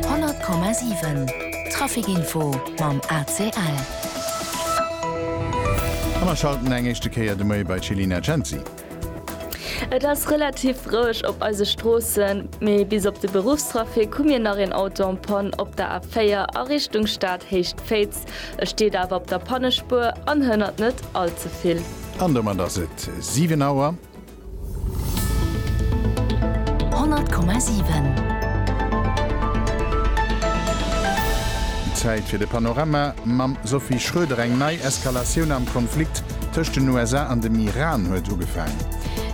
100,7 Trafic Info mam ACL. A mer schalten eng éischte Kéier de Moie bei d'Chelina Cenci. Et ass relativ roueg op eise Stroossen, mee bis op de Beruffstrafic hu mir nach een Auto en panne op der A4 a Richtung Stad Héicht-Féitz. E steet awer op der Pannespuer an hënnert net all ze vill. An domat ass et 7 Auer. Zäit fir de Panorama mam Sophie Schroeder. Eng nei Eskalatioun am Konflikt tëscht den USA an dem Iran huet ugefaangen.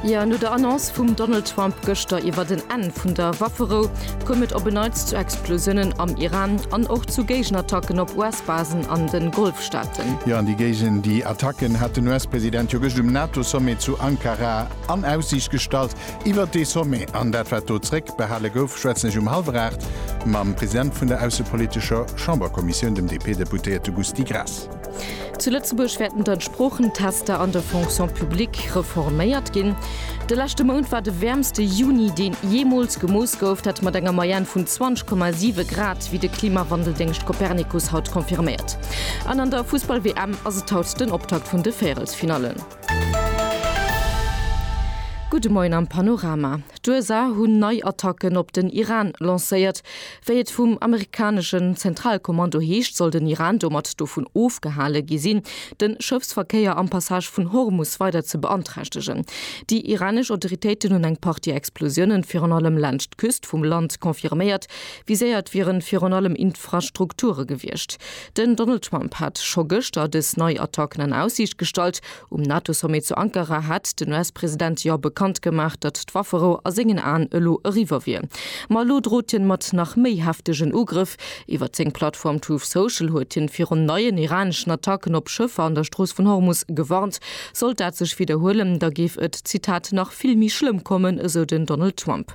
Jo, no der Annonce vum Donald Trump gëschter iwwert en Enn vun der Wafferou, koum et op en Neits zu Explosiounen am Iran an och zu Géigenattacken op US-Basen an de Golfstaate. Staaten. Jo, an déi géigen déi Attacken hat den US-President jo gëscht um NATO-Sommet zu Ankara an Aussiicht gestallt. Iwwert dee Sommet an dat wat do zréck behale gouf, schwätzen ech um hallwer 8 mam President vun der aussepolitescher Chamberkommissioun, dem DP-Deputéierte Gusty Graas. Zu Lëtzebuerg wäerten dann d'Sproochentester an der Fonction publique reforméiert ginn. De leschte Mount war de wäermste Juni, deen jeemools gemooss gouf, dat mat enger Moyenne vun 20,7 Grad. wéi de Klimawandeldéngscht Copernicus haut confirméiert. An an der Fussball-WM ass et haut den Optakt vun de Véierelsfinallen. Gudde Moien am Panorama. D'USA hunn nei Attacken op den Iran lancéiert. Wéi et vum amerikaneschen Zentralkommando heescht, soll den Iran domat dovun ofgehale gi sinn, de Schëffsverkéier am Passage vun Hormus weider ze beanträchtegen. Déi iranesch Autoritéiten hunn eng Partie Explosiounen, virun allem laanscht d'Küst vum Land, confirméiert, Viséiert wieren virun allem Infrastrukture gewiescht. Den Donald Trump hat scho gëschter dës nei Attacken an Aussiicht gestallt. Um NATO-Sommet zu Ankara hat den US-President jo bekannt gemaach, datt d'Wafferou a sengen Aen elo eriwwer wier. Ma elo drot hien mat nach méi heftegen Ugrëff. Iwwert seng Plattform Truth Social huet hien virun neien iraneschen Attacken op Schëffer an der Strooss vun Hormus gewarnt. Sollt dat sech widderhuelen, da géif et, Zitat, nach vill méi schlëmm kommen, esou den Donald Trump.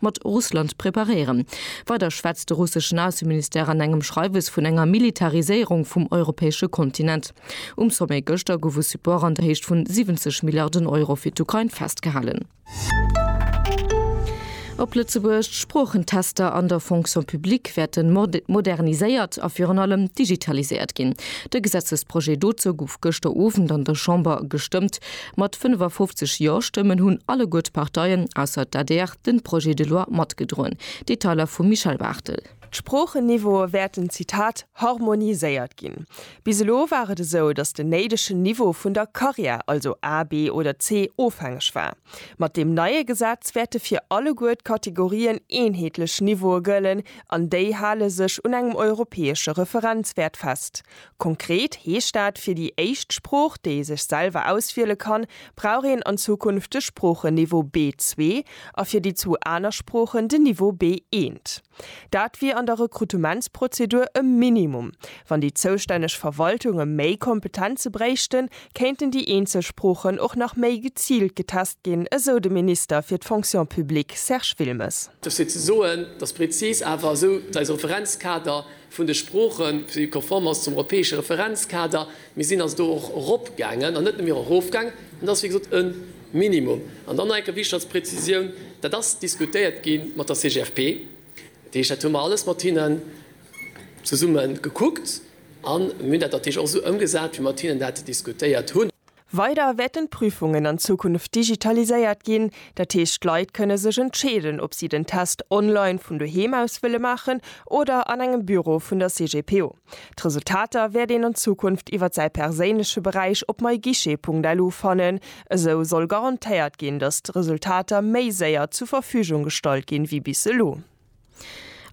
mat Russland preparéieren. Weider schwätzt de russeschen Ausseministère an engem Schreiwes vun enger Militariséierung vum europäesche Kontinent. Um Sommet gëschter gouf u Support an der Héicht vun 70 Milliarden Euro fir d'Ukrain festgehalen. Op Lëtzebuerg, D'Sproochentester an der Fonction publique wäerte moderniséiert a virun allem digitaliséiert ginn. De Gesetzesprojet dozou gouf gëschter Owend an der Chamber gestëmmt. Mat 55 Jo-Stëmmen hunn alleguer d'Parteien, ausser d'ADR, den Projet de loi matgedroen. Detailer vum Michel Barthel. D'Sproochen-Niveaue wäerten, Zitat, harmoniséiert ginn. Bis elo war et esou, datt den néidegen Niveau vun der Karriär, also A, B oder C, ofhängeg war. Mat deem neie Gesetz wäerte fir alleguer d'Kategorien eenheetlech Niveaue gëllen an déi hale sech un engem europäesche Referenzwäert fest, Konkret heescht dat, fir déi éischt Sprooch, déi ee sech selwer auswiele kann, brauch een an Zukunft de Sproochenniveau B2 a fir déi zwou aner Sproochen den Niveau B1. Dat wier an der Rekrutementsprozedur e Minimum. Wann déi zoustänneg Verwaltunge méi Kompetenze bréichten, kéinten déi eenzel Sproochen och nach méi geziilt getest ginn, esou de Minister fir d'Fonction publique Serge Wilmes. Dofir ze soen, dass prezis awer esou eise Referenzkader vun de Sproochen, déi konform ass zum europäesche Referenzkader. Mir sinn also do och eropgaangen an net nëmme erofgaangen. Dat ass wéi gesot e Minimum. An dann nach eng Kéier wichteg als Präzisioun, Dat ass diskutéiert gi mat der CGFP. Dat heescht, dat hu mer alles mat hinnen zesumme gekuckt an mir hunn dat natierlech och esou ëmgesat, wéi mer mat hinnen dat diskutéiert hunn. Weider wäerten d'Prüfungen an Zukunft digitaliséiert ginn, dat heescht d'Leit kënne sech entscheeden, ob si den Test online vun doheem aus wëlle maachen oder an engem Büro vun der CGPO. D'Resultater wäert een an Zukunft iwwer säi perséinleche Beräich op myguichet.lu fannen. Esou soll garantéiert ginn, datt d'Resultater méi séier zur Verfügung gestallt ginn, wéi bis elo.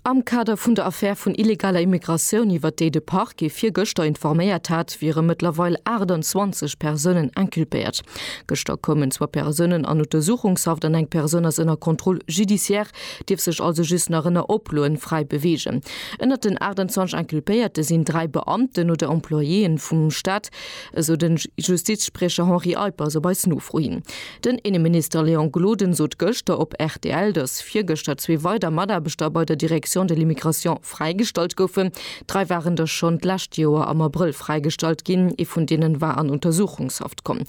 Am Kader vun der Affär vun illegaler Immigratioun, iwwert déi de Parquet virgëschter informéiert hat, wiere mëttlerweil 28 Persounen inculpéiert. Gëschter koumen zwou Persounen an Untersuchungshaft an eng Persoun ass ënner Contrôle judiciaire, dierf sech also just nach ënner Oploen fräi beweegen. Ënnert den 28 Inculpéierte sinn dräi Beamten oder Employéeën vum Staat, esou de Justizspriecher Henri Eippers op eis Nofro hin. Den Inneminister Léon Gloden sot gëschter op rtl, datt virgëschter zwee weider Mataarbechter bei der Direction de l'immigration fräigestallt goufen. Dräi waren der schonn d'lescht Joer am Abrëll fräigestallt ginn, ee vun deenen war an Untersuchungshaft komm.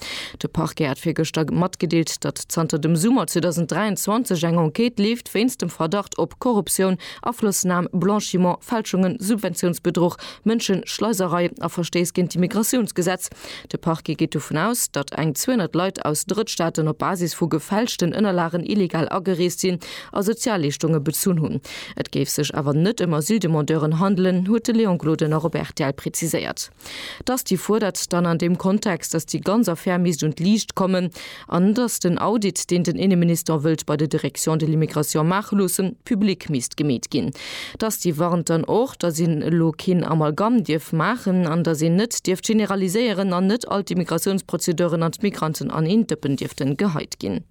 De Parquet hat virgëschter matgedeelt, datt zanter dem Summer 2023 eng Enquête leeft wéinst dem Verdacht op Korruptioun, Aflossnam, Blanchiment, Fälschungen, Subventiounsbedruch, Mënscheschleiserei a Verstéiss géint d'Immigratiounsgesetz. De Parquet geet dovun aus, datt eng 200 Leit aus Drëttstaaten op Basis vu gefälschten Ënnerlagen illegal agereest sinn a Sozialleeschtunge bezunn hunn. Et géif sech awer net ëm Asyldemandeuren handelen, huet de Léon Gloden och op rtl preziséiert. D'Asti fuerdert dann an deem Kontext, datt déi ganz Affär misst un d'Liicht kommen. an datt den Audit, deen den Inneminister wëllt bei der Direction de l'immigration maache loossen, public misst gemeet ginn. Datt déi warnt dann och, datt een elo keen Amalgam dierf maachen an datt een net dierft generaliséieren an net all d'Immigratiounsprozedeuren an d'Migranten an een Dëppen dierften geheit ginn.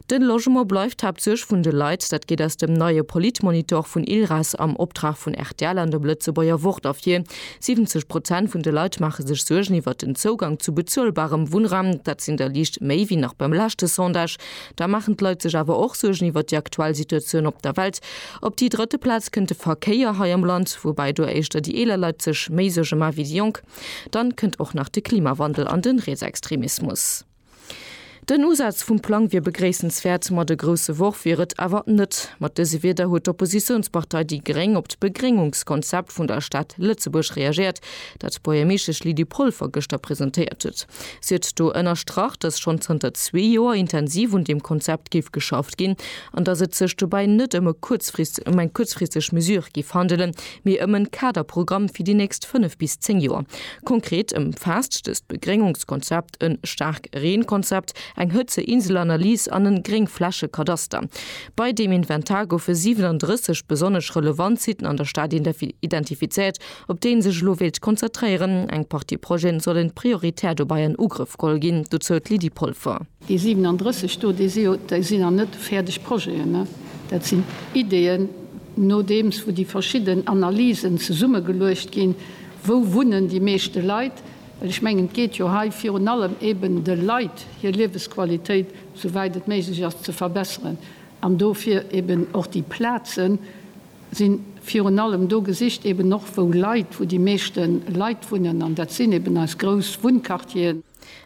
De Logement bleift d'Haaptsuerg vun de Leit. Dat geet aus dem neie Politmonitor vun ILRAS am Optrag vun rtl an dem Lëtzebuerger Wort ervir. 70 Prozent vun de Leit maache sech Suergen iwwert den Zougang zu bezuelbarem Wunnraum. Dat sinn der liicht méi wéi nach beim leschte Sondage. Da maachen d'Leit sech awer och Suergen iwwert déi aktuell Situatioun op der Welt. Op déi drëtte Plaz kënnt de Verkéier hei am Land, woubäi do éischter déi eeler Leit sech méi Suerge ma wéi déi Jonk. Dann kënnt och nach de Klimawandel an de Rietsextremismus. Den Usaz vum Plang wier begréissenswäert, ma de grousse Worf wier et awer net. Mat dëse Wierder huet d'Oppositiounspartei déi gréng op d'Begréngungskonzept vun der Stad Lëtzebuerg reagéiert, dat d'Buergermeeschtesch Lydie Polfer gëschter presentéiert huet. Si huet do ënnerstrach, datt schonn zanter zwee Joer intensiv un deem Konzept géif geschafft ginn an datt et sech dobäi net ëm eng kuerzfristeg Mesure géif handelen, mee ëm e Kaderprogramm fir déi nächst fënnef bis zéng Joer. Konkret ëmfaasst dëst Begréngungskonzept. en staark Reen-Konzept, eng Hëtzeinsel-Analys an en Gréngfläche-Kadaster. Bei deem Inventar goufe 37 besonnesch relevant Sitten an der Stad identifizéiert, op déi ee sech elo wéilt konzertréieren. Eng Partie Projeten sollen prioritär dobäi an Ugrëff geholl ginn, dozou d'Lydie Polfer. Déi 37 do, déi si jo, déi sinn nach net fäerdeg Projeten, dat sinn Ideeën, nodeems wou déi verschidden Analysen zesummegeluecht ginn, wou wunnen déi meeschte Leit, Well ech mengen, et geet jo hei virun allem eben de Leit hir Liewesqualitéit, sou wäit et méiglech ass, ze verbesseren. An dofir eben och déi Plaze si virun allem do gesicht, eben och wou Leit, wou déi meeschte Leit wunnen, an dat sinn eben eis grouss Wunnquartieren.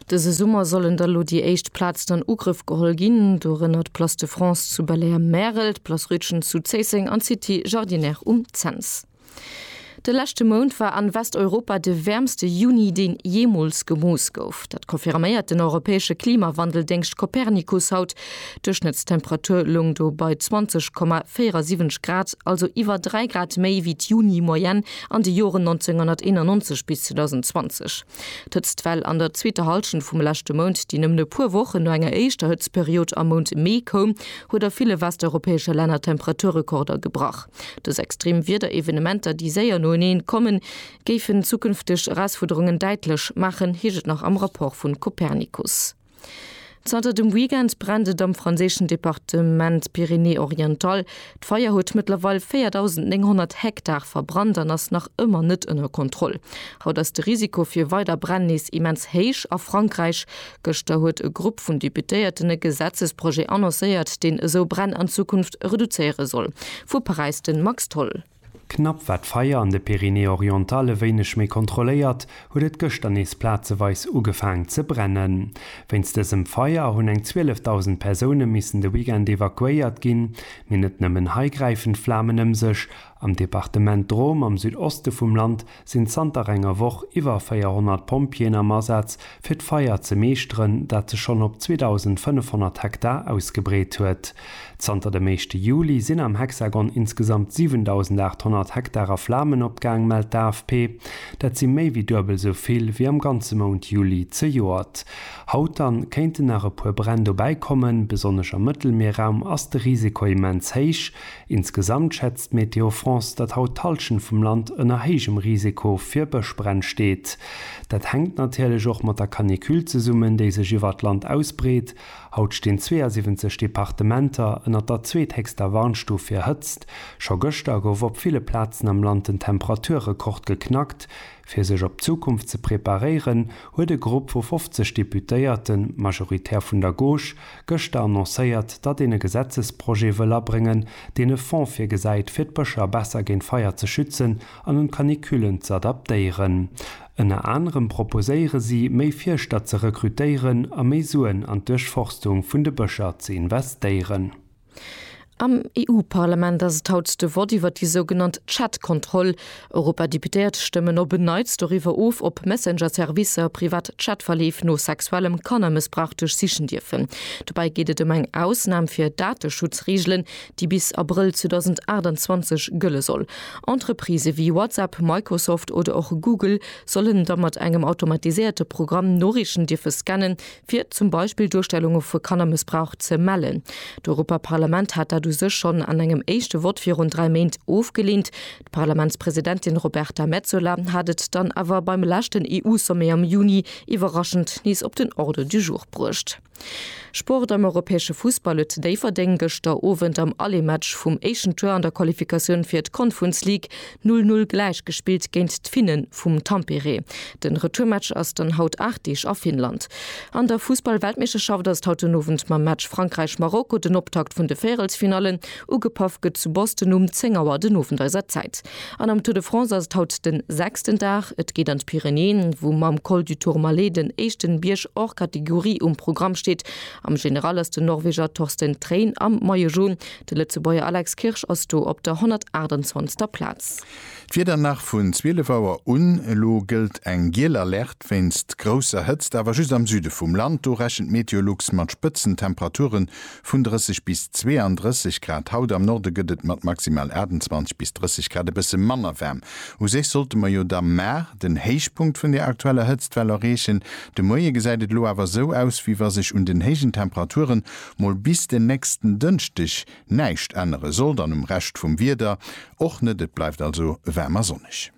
Dëse Summer sollen da lo déi éischt Plazen an Ugrëff geholl ginn, dorënner d'Place de France zu Belair-Märel, d'Place Rütgen zu Zéisseng an d'City Jardinière um Cents. De leschte Mount war an Westeuropa de wäermste Juni deen jeemools gemooss gouf. Dat confirméiert den europäesche Klimawandeldéngscht Copernicus haut. D'Duerchschnëttstemperatur loung do bei 20,47 Grad, also iwwer 3 Grad méi wéi d'Juni-Moyenne an de Joren 1991 bis 2020. D'Hëtztwell an der zweeter Hallschent vum leschte Mount, déi nëmmen e puer Wochen no enger éischter Hëtztperiod am Mount Mee koum, huet a ville westeuropäesche Länner Temperaturrekorder gebrach. Dës extrem Wiederevenementer, déi séier noeneen kommen, géifen zukünfteg Erausfuerderungen däitlech maachen, heescht et nach am Rapport vu Copernicus. Zanter dem Weekend brennt et am franséischen Departement Pyrénées-Orientales. D'Feier huet mëttlerweil 4.900 Hektar verbrannt an ass nach ëmmer net ënner Kontroll. Haut ass de Risiko fir weider Bränn nees immens héich a Frankräich. Gëschter huet e Grupp vun Deputéierten e Gesetzesprojet annoncéiert, deen esou Bränn an Zukunft reduzéiere soll. Vu Paräis de Max Tholl. Knapp war d'Feier an de Pyrénées-Orientales e wéineg méi kontrolléiert, huet et gëschter nees plazeweis ugefaang ze brennen. Wéinst dësem Feier hunn eng 12.000 Persoune missen de Weekend evakuéiert ginn. Mee net nëmmen hei gräifen d'Flamen ëm sech, Am Departement Drôme am Südoste vum Land sinn zanter enger Woch iwwer 400 Pompjeeën am Asaz, fir d'Feier ze meeschteren, dat sech schonn op 2.500 Hektar ausgebreet huet. Zanter dem éischte Juli sinn am Hexagon insgesamt 7.800 Hektar a Flamen opgaang, mellt d'AFP. Dat si méi wéi duebel esou vill wéi am ganze Mount Juli zejoert. Haut dann kéinten nach e puer Bränn dobäi kommen. Besonnesch am Mëttelmierraum ass de Risiko immens héich. Insgesamt schätzt Météo France, datt haut d'Hallschent vum Land ënner héijem Risiko fir Bëschbränn steet. Dat hänkt natierlech och mat der Canicule zesummen, déi sech iwwert d'Land ausbreet. Haut stinn 72 Departementer ënner der zweethéchster Warnstuf fir Hëtzt. Scho gëschter gouf op ville Plazen am Land den Temperaturrekord geknackt. Fir sech op d'Zukunft ze preparéieren, huet e Grupp vu 50 Deputéierte, majoritär vun der Gauche, gëschter annoncéiert, datt een e Gesetzesprojet wëll abréngen, deen e Fonds virgesäit, fir d'Bëscher besser géint Feier ze schützen an un d'Canicullen ze adaptéieren. Ënner anerem proposéiere si, méi Fierschter ze rekrutéieren a méi Suen an d'Duerchforstung vun de Bëscher ze investéieren. Am EU-Parlament ass et haut de Vott iwwer déi sougenannt Chat-Kontroll. Europadeputéiert stëmmen op en Neits doriwwer of, ob Messenger-Servicer privat Chat-Verleef no sexuellem Kannermëssbrauch duerchsichen dierfen. Dobäi geet et ëm eng Ausnam fir Dateschutzreegelen, déi bis Abrëll 2028 gëlle soll. Entreprisë wéi WhatsApp, Microsoft oder och Google sollen da mat engem automatiséierte Programm Noriichten dierfe scannen, fir zum Beispill Duerstellunge vu Kannermëssbrauch ze mellen. D'Europaparlament hat dat u sech schonn an engem éischte Vott virun dräi Méint ofgeleent. D'Parlamentspresidentin Roberta Metsola hat et dann awer beim leschten EU-Sommet am Juni iwwerraschend nees op den Ordre du jour bruecht. Sport, Am europäesche Fussball huet Déifferdeng gëschter Owend am Allemaatch vum éischen Tour an der Qualifikatioun fir d'Confrence League Null Null gläich gespillt géint d'Finnen vum Tampere. Den Retourmatch ass dann haut 8 Deeg a Finnland. An der Fussballweltmeeschterschaft ass et haut den Owend mam Match Frankräich-Marokko den Optakt vun de Véierelsfinallen. Ugepaff gëtt zu Boston um 10 Auer den Owend eiser Zäit. An am Tour de France ass et haut den sechsten Dag. Et geet an d'Pyrenäen, wou mam Col du Tourmalet den éischten Bierg hors catégorie um Programm steet. Am General ass den Norweger Torsten Trein am Maillot Jaune De Lëtzebuerger Alex Kirsch ass do op der 128. Plaz. D'Wieder nach vun 12 Auer un, Elo gëllt eng giel Alerte wéinst grousser Hëtzt, awer just am Süde vum Land. Do rechent Meteolux mat Spëtzentemperatuere vun 30 bis 32 Grad haut. Am Norde gëtt et mat maximal 28 bis 30 Grad e bësse manner waarm. U sech sollte mer jo da mar den Héichpunkt vun der aktueller Hëtztwell erreechen. De Moie gesäit et elo awer esou aus, wéi wa sech un den héijen Temperaturen mol bis den nächsten Dënschdeg näischt ännere sollt an um Rescht vum Wieder och net. Et bleift also waarm a sonneg.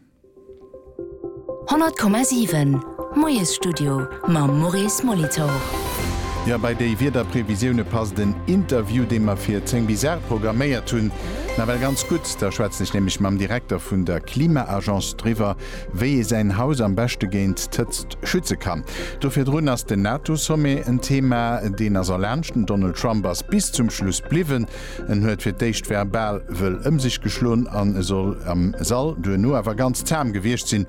100,7 Moiesstudio mam Maurice Molitor. Jo, bei déi Wiederprevisioune passt en Interview, dee mer fir 10 bis 8 programméiert hunn, nawell ganz gutt. Da schwätzen ech nämlech mam Direkter vun der Klima-Agence driwwer, Wéi ee säin Haus am beschte géint d'Hëtzt schütze kann, do virdrun ass den NATO-Sommet en Thema. Deen ass erlaanscht. Den Donald Trump ass bis zum Schluss bliwwen. En huet fir d'éischt verbal wëll ëm sech geschloen an e soll am Sall duerno awer ganz zahm gewiescht sinn.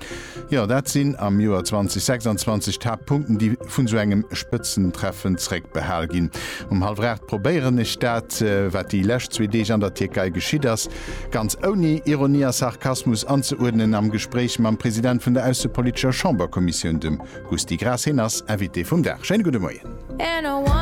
Jo, dat sinn am Joer 2026 d'Haaptpunkten, déi vun sou engem Spëtzentreffen zréckbehal ginn. Um hallwer 8 probéieren ech dat, wat déi lescht zwee Deeg an der Tierkei geschitt ass, Ganz ouni Ironie a Sarkasmus anzeuerdnen am Gespréich mam President vun der aussepolitescher Chamberkommissioun, dem Gusty Graas. Heen ass Invité vum Dag. Schéine gudde Moien.